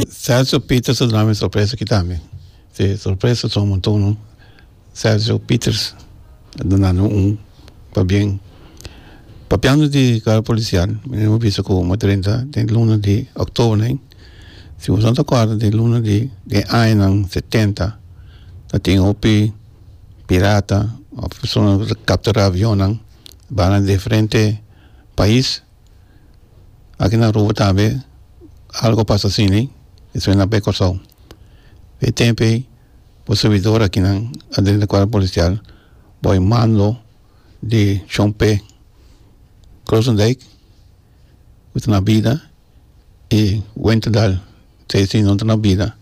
Sergio Peter su drama e sorpresa aki tambe si sorpresa son monton no Sergio Peters a dunanno un pabien papiando di guarda policial mi no a bisa cu bo drenta den luna di october ain si boso no ta cuarda den luna di den añanan setenta ta tin hopi pirata of personanan cu ta captura avionnan bana diferente pais aki na Aruba tambe algo a pasa asina y suena ape Kòrsou e tempoe bo servidora kinan a den de cuerpo policial bo a mando di chompe Grootendijk bo ta na bida y Wentendal seis di nos ta na bida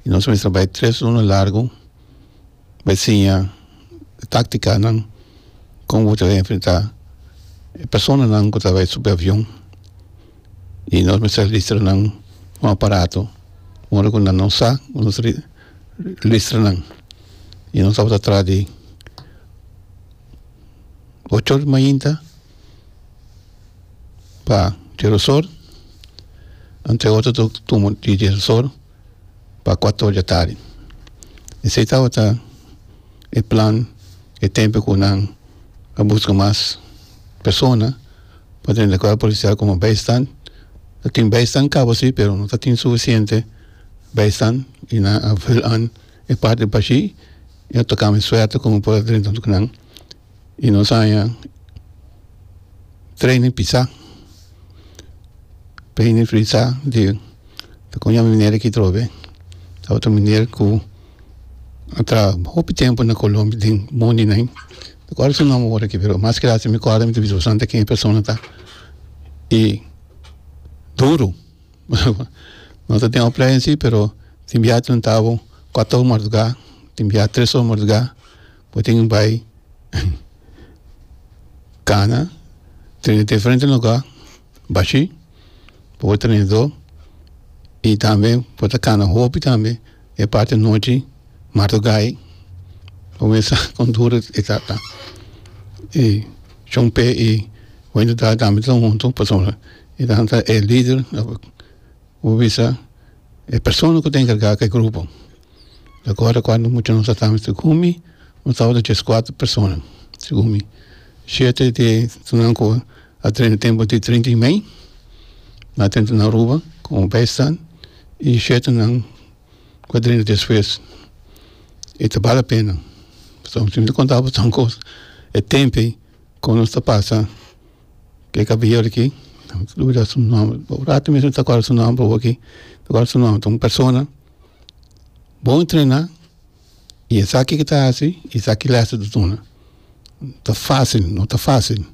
y nos a mester bai tres ora largo. e siña táktikanan kon bo ta bin enfrentá e personanan ku ta bai subi avion i nos mester listra nan un aparato ora ku nan no sa ku nos listra nan i nos tabata tras di ocho òr di mainta pa Chirozor anteoter tur tuma di Chirozor. pa kuator dja tardi. Esei tabata e plan e tempu ku nan a buska mas persona pa den e kuerpo polisial komo beistan. Ta tin beistan kaba si pero no tatin sufisiente beistan i nan a vul an e parti bashi'i i a toka mi suerte ku mi por a drinta nan. y nos a haña training pisa training pisa di con nan miner aki trove otro miner cu a traha hopi tempo na colombia den mundi den mi cual su nomber awor aki pero mas gracia mi cual mi ta bisa bastante aki e persona ta y duro no ta den un play en si pero tin biaha tin un tabo cuato awo marduga tin biaha tres awo marduga. Bo tin bai cana trene diferente lugar bashi bo bo trene do y tambe bo ta cana hopi tambe e parte nochi madugai bo me sa con duro e ta ta y chong p'e y wendy dalton tambe ta hunto pasobra e ta e lider. Bo bisa e persona ku ta enkargá ku e grupo. Ta kòrda kuantu mucha nos a tambe ta kumi? Nos tabata tres kuater persona ta kumi. Shete di esnan ku a trena tempu di treinta di mei na tenta na Aruba komo baistand i shetenan ku a trena despues. I ta bale pena pasobra si bo ta konta botòn kos e tempu ei Kon nos ta pasa ku e kabeer aki dura su nomber por rato mesmo no ta acorda su nomber oki ta acorda su nomber ta un persona bon entrena y esaki ki ta hasi y esaki les ta duna ta facil no ta facil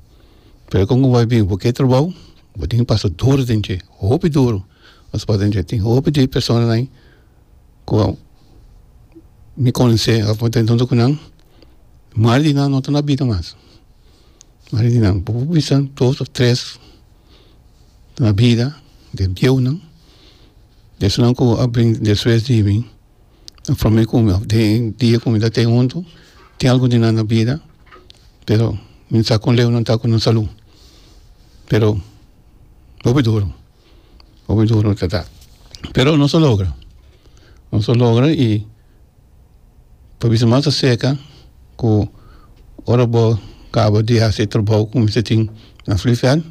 pero kon bo bai bini bo ke trabao bo tin ki pasa duro den dje hopi duro pasobra den dje tin hopi di personanan. ku mi konsé mari di nan no ta na bida mas mari di nan bo bisa dos ò tres ta na bida den bieunan di esanan ku a bring despues di mi a prome ku mi den dia ku mi ta ten huntu tin algu di nan na bida pero mi sa kon leu nan ta ku nan salu pero hopi duru. Hopi duro ta ta pero nos ta logra nos ta logra y ta bisa mas acerca cu ora bo caba di hasi e trabou cu mester tin na fliveld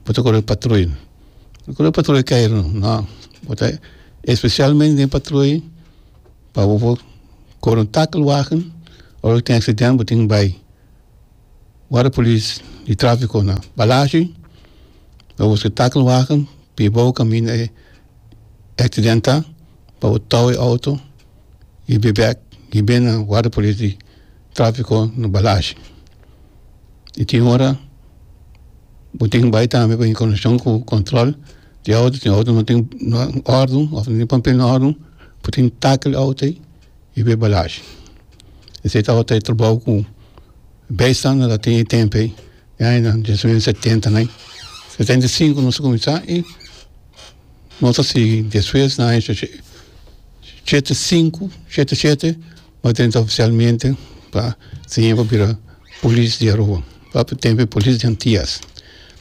bo ta cora patruy bo cora patruy cairo no bo ta especialmente den patruy pa bo cora un takelwagen ora cu tin accident bo tin bay. Guarda polis di trafiko na Balashi lo usa takelwagen pi bou kaminda e aksidenta pa bo tou e outo i bai bek i bin na guarda polis di trafiko na Balashi i tin ora bo tin bai tambe pa inkornashon ku kontrol di outo si outo no tin órdu of no tin papel órdu bo tin takel outo ei. i be balashi. Esei tabata e trabou ku bijstander a tin e tempu ei, e añanan di mes setentan ei. Setenta i sinku nos a kuminsá i nos ta sigui despues na aña shete i sinku, shete i shete bo a drenta ofisialmente pa siña pa bira polis di Aruba. Bo a tempu e polis di Antias.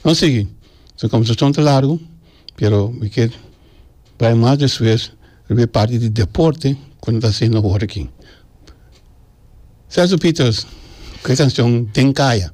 Nos a sigui, su komensashon ta largu, pero mi ke bai mas despues. Primer parti di deporte cu no ta haciendo ahora aki. Celso Pieters cu e cancion Den Caya.